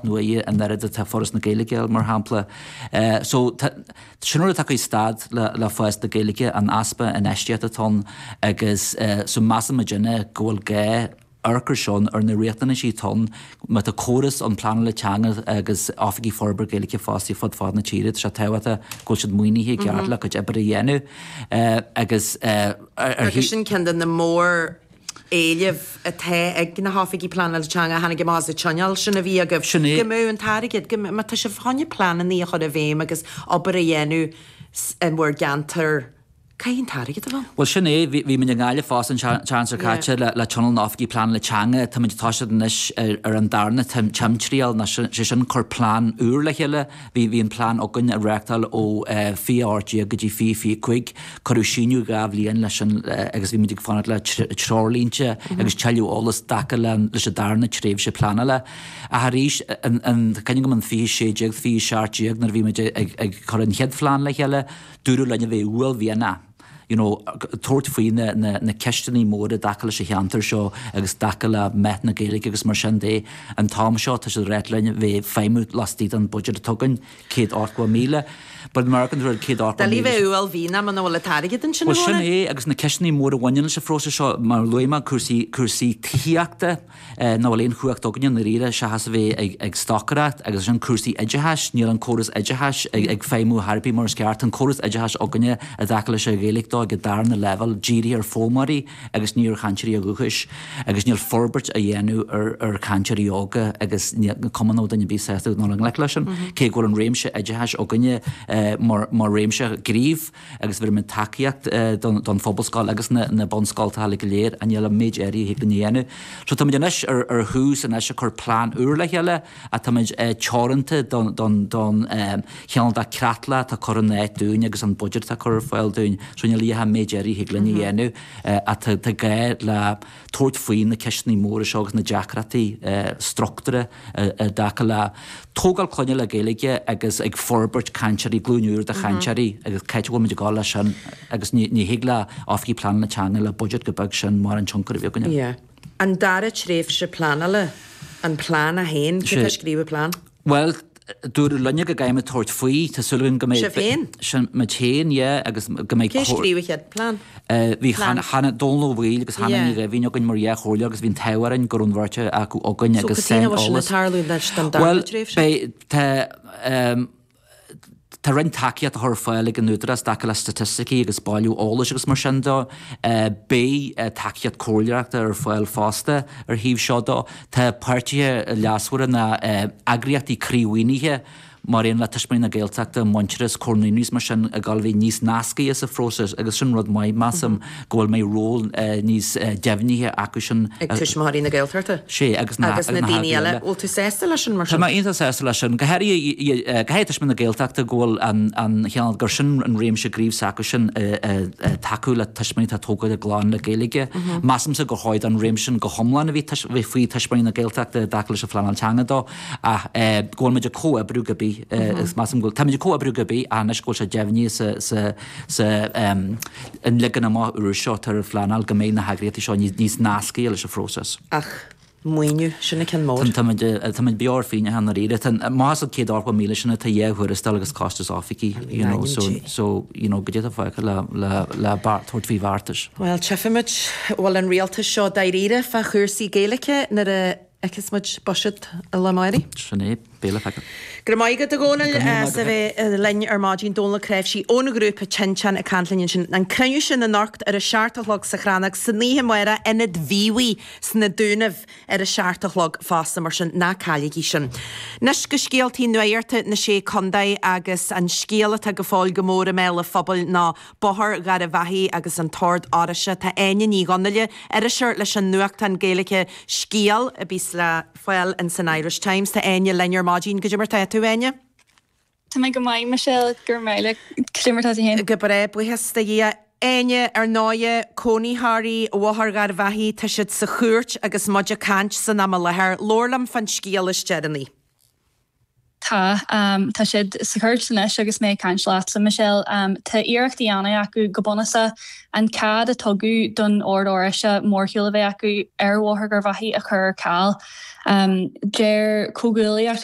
nó eie an oiread atá Foras na Gaeilge air, mar shampla. So, sin rud atá ag stad le fás na Gaeilge, an easpa infheistíochta atá ann agus so measann muidinne go bhfuil gá amharc ar seo ar na riachtanaisí atá ann má tá córas ann, pleanála teanga agus oifigigh forbartha Gaeilge fostaithe fud fad na tíre, tá sé tábhachtach go bhfuil siad maoinithe i gceart le a gcuid oibre a dhéanamh agus ar. Agus sin ceann de na mór. éilimh atá ag na hOifigigh Pleanála Teanga a tháinig amach as an tionól sin a bhí agaibh, go mbeadh an t-airgead, go mbeadh, tá sibh chun pleananna a chur i bhfeidhm agus obair a dhéanamh in bhur gceantar, caithfidh an t-airgead a bheith. Bhuel, sin é, bhí muid i nGaillimh fosta an tseachtain seo caite le tionól na nOifigigh Pleanála Teanga, táimid ag toiseacht anois ar an darna timthriall, sé sin cur plean úr le chéile, Bhí an plean againn ag reáchtáil ó fiche ocht déag go dtí fiche fiche cúig. Cuireadh síneadh dhá bhliain leis agus bhí muid ag fanacht le treoirlínte agus tuilleadh eolas i dtaca leis an darna tréimhse pleanála. Ach arís, tá cuimhne agam in fiche sé déag, fiche seacht déag nuair a bhí muid ag cur an chéad phlean le chéile, dúradh linn a bheith uaillmhianach. you know, tabhairt faoi na, na, na ceisteannaí móra i dtaca leis an cheantar seo agus i dtaca le meath na Gaeilge agus mar sin de. An t-am seo, tá siad ag rá linn bheith ag feidhmiú lastaigh den budget atá againn, céad ochtó míle. But in American world, céad ochtó míle. Doiligh bheith uaillmhianach muna bhfuil an t-airgead ansin Bhuel, sin é, agus na ceisteannaí móra a bhaineann leis an phróiseas seo, mar a luaigh mé cúrsaí, cúrsaí tithíochta, níl aon chumhacht againn i ndáiríre seachas a bheith ag stocaireacht, agus ansin cúrsaí oideachais, níl an córas oideachais ag feidhmiú ar chor ar bith mar is ceart, tá an córas oideachais againne i dtaca leis an Ghaeilge dó ag an darna leibhéal dírithe ar foghlaimeoirí agus ní ar chainteoirí dhúchais agus níl forbairt á dhéanamh ar chainteoirí óga agus níl cumann nó duine ar bith sásta dul i ngleic leis sin cé go bhfuil an réimse oideachais againne mar réimse gnímh. agus bheir muid tacaíocht don phobalscoil agus na bunscoltacha go léir, ach níl ach méid áirithe a thig linn a dhéanamh. So táimid anois ar thús anois ag cur plean úr le chéile ach táimid teoranta don chineál de creatlach atá curtha in áit dúinn agus an budget atá curtha ar fáil dúinn. So níl ach méid áirithe a thig linn a dhéanamh ach tá gá le tabhairt faoi na ceisteanna móra seo agus na deacrachtaí struchtúra. i dtaca le tógáil clainne le Gaeilge agus ag forbairt cainteoirí, glúin úr de chainteoirí agus c'áit a bhfuil muid ag dul leis sin agus ní ní thig le Oifigigh Pleanála Teanga le budget go beag sin mórán tionchar a bheith againne. Yeah. An dara tréimhse pleanála, an Plean 1, cé atá ag scríobh an Plean? Bhuel, dúradh linne go gcaithfimid tabhairt faoi, tá súil againn go mbeidh, Sibh féin? sin muid féin, yeah, agus go mbeidh Cé scríobh an chéad Plean? Bhí Dónall Ó Baoill agus Hannah Ní Dhoimhín againn mar dhá chomhairleoir agus bhí an t-ádh orainn go raibh an bheirt acu againn agus saineolas. So cad é sin ag tarlú leis don dara tréimhse? Bhuel, tá roinnt tacaíocht á chur ar fáil ag an Údarás i dtaca le staitisticí agus bailiú eolais agus mar sin dó. Beidh tacaíocht comhairleoireachta ar fáil fosta ar an taobh seo dó. Tá páirtithe leasmhara na heagraíochtaí croímhaoinithe, mar aon le Tuismitheoirí na Gaeltachta, Muintearas, Comhar Naíonraí is mar sin, ag gabháil a bheith níos nascaithe sa phróiseas agus sin rud maith, measaim, go bhfuil mbeidh ról níos deimhnithe acu sin. Ag Tuismitheoirí na Gaeltachta? Sea, agus na Agus na daoine eile, bhfuil tú sásta leis sin mar sin? Tá mé iontach sásta leis sin, go háirithe caithfidh Tuismitheoirí na Gaeltachta go bhfuil an an cheann gur sin an réimse gnímh s'acu sin i i i tacú le tuismitheoirí atá ag tógáil a gclann le Gaeilge. Measaimse gur chóir don réimse sin go hiomlán a bheith faoi Tuismitheoirí na Gaeltachta i dtaca leis an phleanáil teanga dó, Ach go bhfuil muid ag comhoibriú cibé, is measaim go bhfuil. Táimid ag comhoibriú cibé anois go bhfuil sé deimhnithe sa an leagan amach úr seo atá ar an phleanáil go mbeidh na heagraíochtaí seo níos nascaithe leis an phróiseas. Ach maoiniú, sin an ceann mór. Táimid beo ar phingneacha dáiríre. Amach as an chéad ochtó míle sin tá dhá thuarastal agus costas oifigí, you know, so, so, you know, cad é atá fágtha le, le, le tabhairt faoi bheartais. Bhuel, tífimid an bhfuil an rialtas seo dáiríre fá chúrsaí Gaeilice nuair a. fheicfeas muid buiséad an lae amárach. Sin é. Beidh le feiceáil. Go raibh maith agat, a Dhónaill, as a bheith linn ar maidin. Dónall Ó Cnáimhsí ón ghrúpa Tinteán ag caint linn ansin. An cruinniú sin anocht ar a seacht a chlog sa Chrannóg, san oíche amárach, Ionad Mhíobhaigh sna Dúnaibh ar a seacht a chlog fosta, mar sin ná cailligí sin. Anois go scéaltaí nuachta na Sé Chontae agus an scéal atá go fóill go mór i mbéal an phobail ná Bóthar Gharbhachaidh agus an tOrd Oráisteach, tá Áine Ní Dhonnaile, iriseoir leis an nuachtán Gaeilge Scéal, a bhíos le fáil in san Irish Times. Tá Áine linn ar maidin. Cad é mar tá tú, a Áine? Tá mé go maith, Michelle, go raibh míle. Cad é mar tá tú féin? Go breá, buíochas do Dhia. Áine, ar ndóighe, cónaitheoirí Bhóthar Gharbhachaidh, tá siad sa chúirt agus muid ag caint san am i láthair. Labhair liom fán scéal is deireanaí. Tá. Tá siad sa chúirt anois agus mé ag caint leat, a Michelle. Tá iarracht á dhéanamh acu, go bunúsach, an cead a tugadh don Ord Oráisteach mórshiúl a bheith acu ar Bhóthar Gharbhachaidh a chur ar ceal. Deir Comhghuaillíocht.